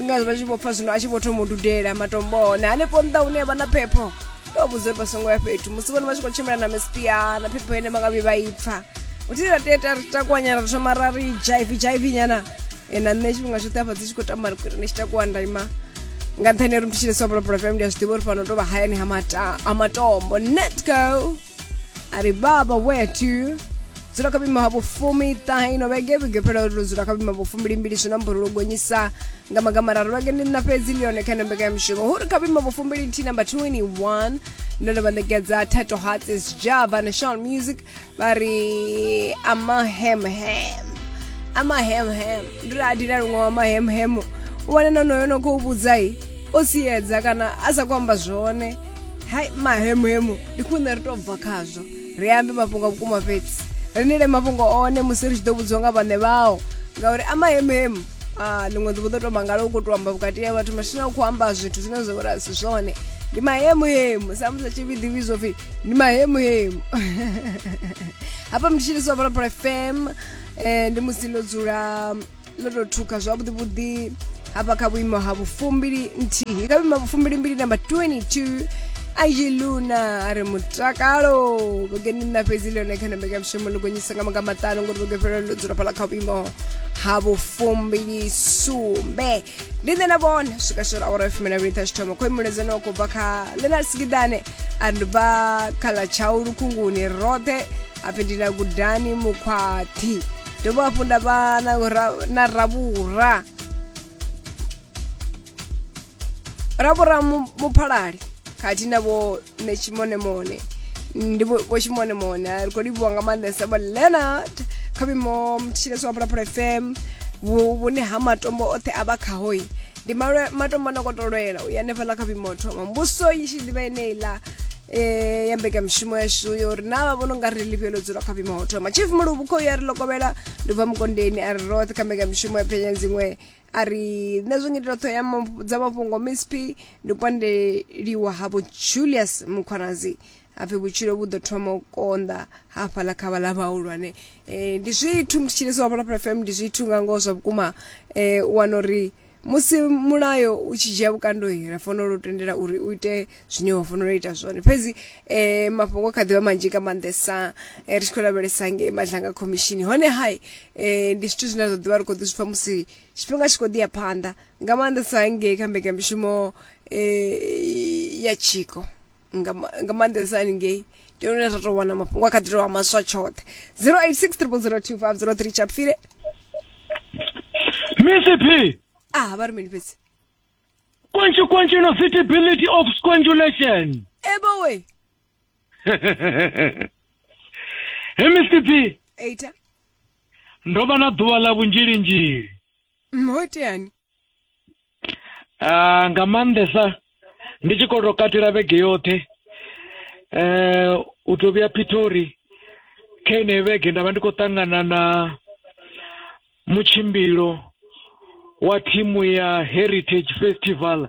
nga vha tshi vho pfa zwino a tshi vho thoma u dudela matombo hone hanefho nnḓa hune vha na phepho vha vhudze vha songo ya fhethu musi vhone vha tshi khou tshimbila na mespia na phepho ine vha nga vhi vha ipfa uthi ra teta ri takuwanyana ri thoma ra ri jaivi jaivi nyana na nṋe tshifhinga tshoṱhe afha dzi tshi khou tamba ri kuri ni tshi takuwa nda ima nga nṱhani ri mthitshile sobolopolo fm ndi a zwi ḓivha uri fano tou vha hayani ha matombo netco ari baba wetu dzula kabima ha vhufumi ṱahino vhege vhege phela uri dzula kabima vhufumi limbili zwi na mburulo gonyisa nga magamararu vhege ndi na fhedzi ndi yone kha ino mbekanyamushumo huri kabima vhufumi lithihi namba 21 ndo ndo vha ṋekedza tato hearts is java national music vha ri amahemhem amahemhem ndi ri adina luṅwe wa mahemhemo u wane nonoyo no khou vhudzai o siedza kana a sa khou amba zwone hai mahemuhemu ndi khune ri tou bva khazwo ri ambe mafhungo a vhukuma fhedzi ri nile mafhungo one musi ri tshi ḓo vhudziwa nga vhaṋe vhao ngauri a mahemuhemu a ḽiṅwe ḓuvha ḓo tou mangala u khou tou amba vhukati ya vhathu mashina u khou amba zwithu zwine zwa vhori a si zwone ndi mahemuhemu samusi a tshi vhi ḓivhi zwo pfhi ndi mahemuhemu hafha mnditshiliswa volapolo fm um ndi musi ndo dzula ndo tou thuka zwavhuḓi vhuḓi hafha kha vhuimo ha vhufumbili nthihi kha vhuimo ha vhufumbili mbili namba 22 ayi luna a ri mutakalo vhugeni nna fhedzi ḽone kha namba ya mushumo ḽi gonyisa nga manga maṱanu ngori vhuge fhelo ḽo dzula fhala kha vhuimo ha vhufumbili sumbe ndi nṋe na vhone swika swela awara ya fumi na vhili thashithoma khou imuledzani wa khou bva kha lenal sigidane a ri bva kha ḽa tshau lukhunguni roṱhe hapfi ndi na gudani mukhwaṱhi dovha hafhu nda vha na ra- na ravhura ravhura mu- muphalali khathihi na vho ne tshimonimoni ndi vho vho tshimonimoni a ri khou livhuwa nga maanḓesa vho leonard kha vhuimo mutshilesi wa phalaphala fm vhu- vhune ha matombo oṱhe a vha khahoi ndi malwe- matombo a no kotolwela u ya hanefhaḽa kha vhuimo thoma mbuso i tshi ḓivha eneiḽa eh ya mbekamishumo yashu yo ri na vha vhono nga ri ḽifhio ḽo dzula kha vhima ho thoma chief muluvhu khou ya ri lokovhela ndi bva mukondeni a ri roṱhe kha mbekamishumo ya phenya dziṅwe a ri nṋe zwo ngitela ṱhoho ya mafhu- dza mafhungo msp ndi kwandeliwa havho julius mukhwanazi hapfi vhutshilo vhu ḓo thoma u konḓa hafhaḽa kha vhaḽa vhahulwane um ndi zwithu ndi tshilisa wa vholaphala fm ndi zwithu nga ngoho zwa vhukuma um u wana uri musi mulayo u tshi dzhia vhukando ra fanela u tendela uri u ite zwine wa fanela u ita zwone fhedzi eh mafhungo kha ḓivha manzhi nga maanḓesa eh, ri tshi khou lavhelesa ngei madlanga khomishini hone hai eh ndi zwithu zwine zwa ḓivha ri khou ḓi zwipfa musi tshifhinga tshi khou ḓi ya phanḓa nga maanḓesa ngei kha mbekamishumo eh ya tshiko nga ma- nga maanḓesa haningei ndi hone zwa tou wana mafhungo a kha ḓi tou vha maswa tshoṱhe 086 002503 chapfile mcp ah vha ri mini fhedzi kwenchi kwenchi no fitability of squangulation ebowe he mcp eita ndo vha na ḓuvha ḽa vhunzhilinzhili mhoteani ah, nga maanḓesa ndi tshi khou tou katela vhege yoṱhe eh u tou vhuya Pitori kha ine vhege nda vha ndi khou ṱangana na mutshimbilo wa thimu ya Heritage Festival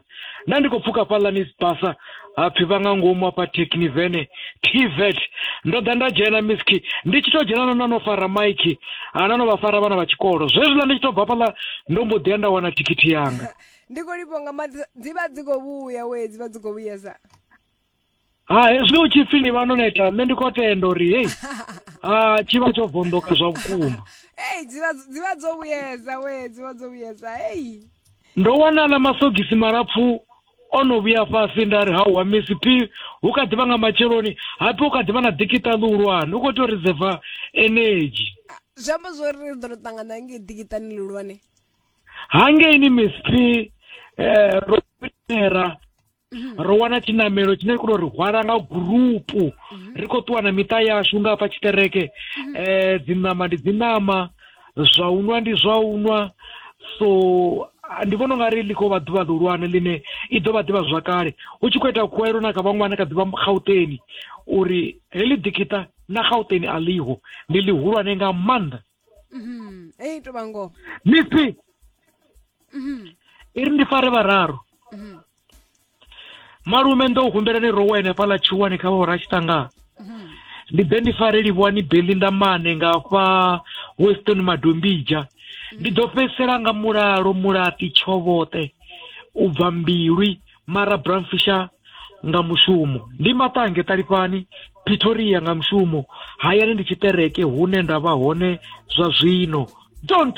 nda ndi khou pfuka fhaḽa Nisbasa hapfi vha nga ngomu hafha thekini vene tvet ndo ḓa nda dzhena miski ndi tshi to dzhena no na no fara maiki ana no vha fara vhana vha tshikolo zwezwiḽa ndi tshi to bva fhaḽa ndo mbo ḓi ya nda wana thikhithi yanga ndi khou livho nga maḓi dzi vha dzi khou vhuya we dzi vha dzi khou vhuyesa ha hezwi u tshi pfi ni vha no neta nṋe ndi khou tenda uri hei a tshi vha tsho vondoka zwa vhukuma ei dzi vha dzi vha dzo vhuyesa we dzi vha dzo vhuyesa ei ndo wana na masogisi malapfu o no vhuya fhasi nda ri hauwa misi phi hu kha ḓivha nga matsheloni hapfi hu kha ḓivha na dikita ḽihulwane u khou tea u reserva energy zwi amba zwori ri ḓo ri ṱangana ngei dikitani ḽihulwane hangeini misi phi um ro era mhm. ro wana tshinamelo tshine kuno ri hwala nga gurupu mhm. ri khou ṱuwa na miṱa yashu nga hafha tshiṱereke um dzi ṋama ndi dzi ṋama zwa u nwa ndi zwa u nwa so ndi vhona unga ri ḽi khou vha ḓuvha ḽihulwane ḽine i ḓo vha ḓivha zwakale hu tshi khou ita khuwelo na kha vhaṅwana kha ḓivha gauteni uri heḽi ḓikiṱa na gauteni a ḽiho ndi ḽihulwane nga maanḓa mhm. ei to vhango misi mhm. i ri ndi fare vhararu mhm. malume ndo u humbela ni rowe henefhaḽa tshiwani kha vhora tshiṱangana mhm. ndi ḓe ndi fare livhuwani beli ndamane nga fha weston madombija ndi ḓo fhedzisela nga mulalo mulati tshovhoṱe u bva mbilwi mara bramfisha nga mushumo ndi maṱange ṱalifhani pretoria nga mushumo hayani ndi tshiṱereke hune nda vha hone zwa zwino don't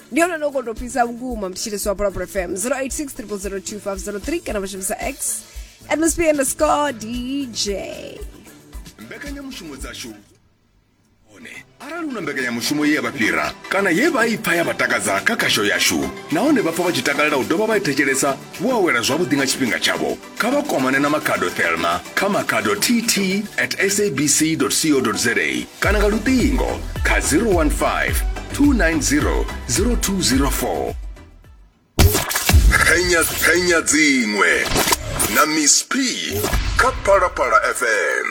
ndi ono nokotopisa vhukuma mtshitisi wa pulapula fm 086 002503 kana vha shumisa x at msp underscore dj mbekanyamushumo dzashu hone arali hu na mbekanyamushumo ye ya vha fhira kana ye vha i pfa ya vha takadza kha khasho yashu nahone vha pfa vha tshi takalela u dovha vha i thetshelesa vho awela zwavhuḓi nga tshifhinga tshavho kha vha kwamane na makhado thelma kha makhado tt at sabc co za kana nga luṱingo kha 015 290 0204 phenya phenya dziṅwe na miss p kha phalaphala fm